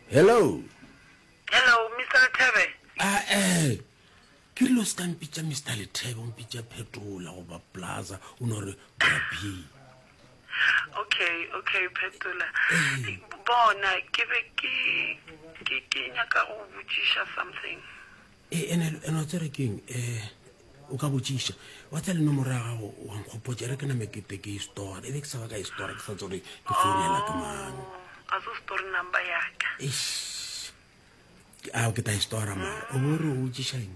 Hello. Hello, Mr. Lethebe. Ah, eh. Ke rile o se ka mpitša Mr. Lethebe, o mpitša Phetola goba Plaza, o no re Brabi. Okay, okay, Phetola. Bona, ke be ke ke ke nyaka go botšiša something. E ene ene o tsere keng? Eh, o ka botšiša. Wa tsa le nomoro ya gago wa nkgopotša re ke name ke te ke store. E be ke sa ba ka store ke sa tsore ke founela ke mang. A se store number ya ka. Eish. A ke ta store ma. O bo re o botšiša eng?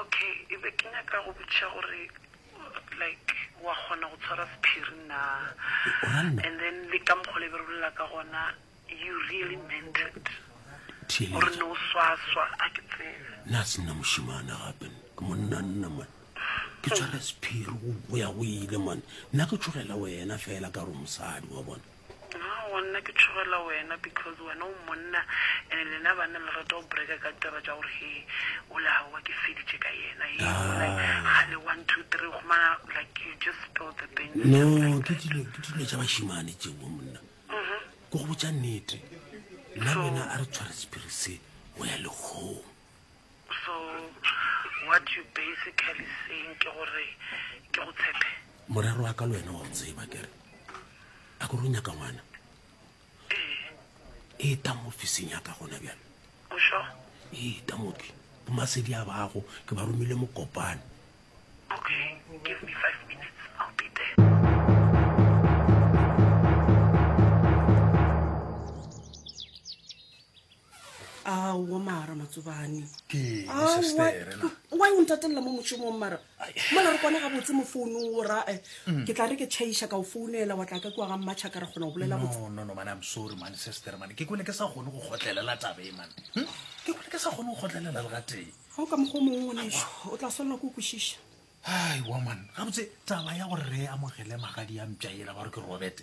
Ok e be ke nyaka go botšiša gore like wa kgona go tshwara sephiri naa and then le ka mokgwa le be re bolela ka gona you really meant it gore ne o swaswa a ke tsebe nna se nna mošimana gape ke monna nna man ke tshwara sephiri go ya go ile man nna ke tshogela wena fela ka gore mosadi wa bona Aowa, nna ke tšhogela wena because wena o monna and lena banna le rata go breka ka ditaba tša gore he ola haowa ke feditše ka yena he ola gale one two three gomana like you just spill the beans no just like ke that. dilo ke dilo tša bašimane tšeo monna ke go botša nnete nna le wena a re tshware sephiri se go ya lekgong So what you basically saying ke gore ke go tshepe? Morero wa ka le wena wa go tseba kere. A go runya ka ngwana. E ta mo ofising ya ka gona bjalo. O sho? E ta mo ke. Bo masedi a bago ke ba romile mo kopane. Okay, give me 5 minutes. I'll be there. aowa mara matsobane wa o ntatelela mo mošomong mara mola re kwane ga botse mo founong o ra eh, mm. ke tla re ke chaiša ka o founela wa tla ka kua ga mmatšha ka re kgona go bolela ke kone ke sa kgone go kgotlelela tabe man hm? ke kone ke sa kgone go kgotlelela le gateng ga o ka mokgwa mongwe ngwaneso o tla swanela ko o kwešiša ai wa man gabotse taba ya gore re amogele magadi ya mpša ela ba re ke robete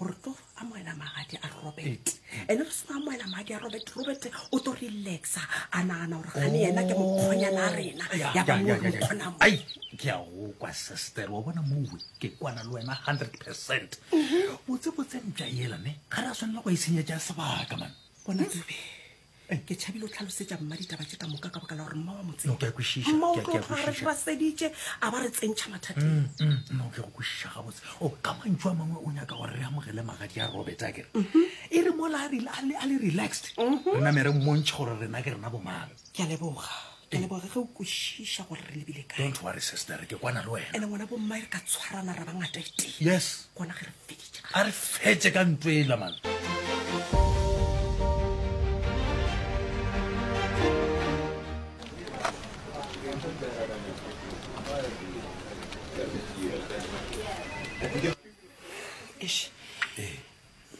gore tlo amoela magadi a robert ene re seno amoela magadi a robert robert o tlo relaxa a nagana gore gane yena ke mokgonyana a rena ya bamokgonamo ai ke ya go kwa sister wa bona mowe ke kwana le wena hundred percent botsebotse mpša ela me ga re a tshwanela go e senyetša sebaka man bona ke tšhabile o tlhalosetša mma ditaba tše ka moka ka baka la gore mma wa motsemma o tlo tlhoga re tšhwaseditše a ba re tsentšha mathateng mm, mm, mm, o ke go kwešiša gabotse o oh, ka mantšu a mangwe o nyaka gore re amogele magadi a robert a kere mhm. e re mola a le relaxed mhm. re namere mmontšha gore rena ke rena bomang ke a leboga Ke leboga ge o kwešiša gore re lebile kae. Don't worry sister, ke kwana le wena. Ene ngwana bommae re ka tshwarana ra ba ngata e tee. Yes. Gona ge re feditše. A re fetše ka ntwe ela man.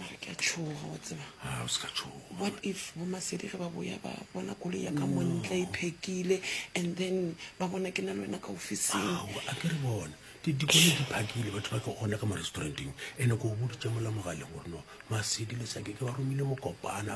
mara ke a tšhoga wa tseba Ah, o se ka tšhoga. what if bomasedi ge ba boya ba bona koloi ya ka montle e phekile and then ba bona ke na le wena ka ofising Ao, a ke re bone Di- dikoloi di phakile batho ba ka gona ka mo-restauranteng ene ko o boditse mola mogaleng gore no masedi le sake ke ba romile mokopana